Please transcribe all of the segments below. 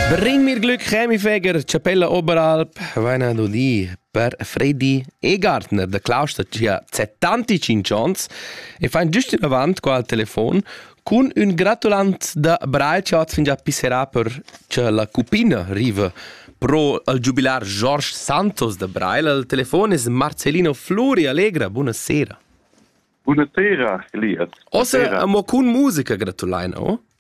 Bring mir Glück, Chemifeger, Chapella Oberalp, Vaina Duli, per Freddy Egartner da Klaus da gia 75 ans e fain giust inavant qua al telefon cun ün gratulant da Breitschat fin già pisserà per che la cupina riva pro al giubilar George Santos da Breil. Al telefon es Marcellino Flori Allegra. Buonasera. Buonasera, Elias. Ossa amo cun musica gratulaina, o?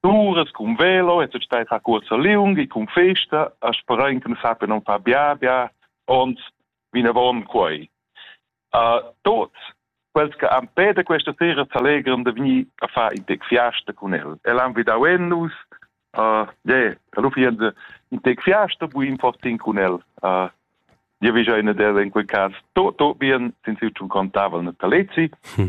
Turas cun velo e tut stai a cuorsa liung e cun festa a sperare che ne sappia non far bia bia und vinavon quei. Uh, tot quels che han pede questa sera s'allegran de venir a far in tec fiasta con el. El han vidau ennus, uh, yeah, lu fien de in tec fiasta buin fortin con el. Uh, Io vi già in del in quel caso to to bien sin si un contavel na talezi hm.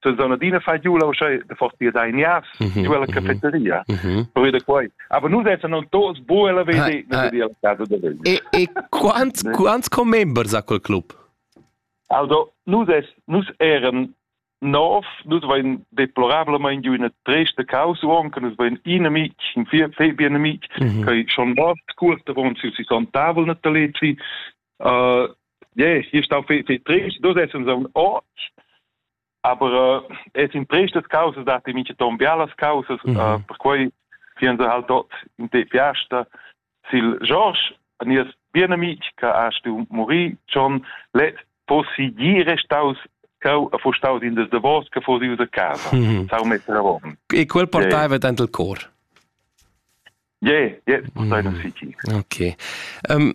se sono adina fai giù la usce de forti da inias mhm, giù alla mhm, cafeteria mhm. per vede quai aber nu dessa non tos bu la vede ne vedi al caso de vedi e e quants quants co members ha quel club also nu des nus eran Nov, nus vain deplorablement giu üna tresta causa anche, nus vain un amic, in Febi un amic, mm -hmm. che schon oft curte von si si son tavol nataletri, uh, yeah, ich stau fi fi trist du sest uns am ort aber äh, es in tristes causas da ti minche ton bialas causas mm -hmm. uh, per quei fien se halt dort in te fiasta sil George nies bien amic che ha stu muri John let possigire staus cau a fu staus in des de vos che fosi usa casa mm -hmm. sau metra rom e quel portava yeah. dentro il cor Yeah, yeah, mm. City. Okay. Um,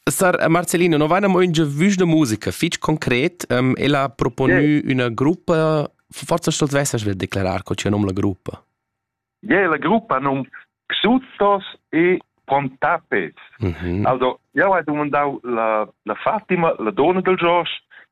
Sar Marcelino, no vaina mo in giavüsch da musica, fich concret, um, el ha proponü yeah. üna gruppa, forza stolz vesas vil declarar co c'è nom la gruppa? Yeah, la gruppa num Xuzos e Pontapes. Mm -hmm. Also, io ho domandau la, la Fatima, la donna del Josh,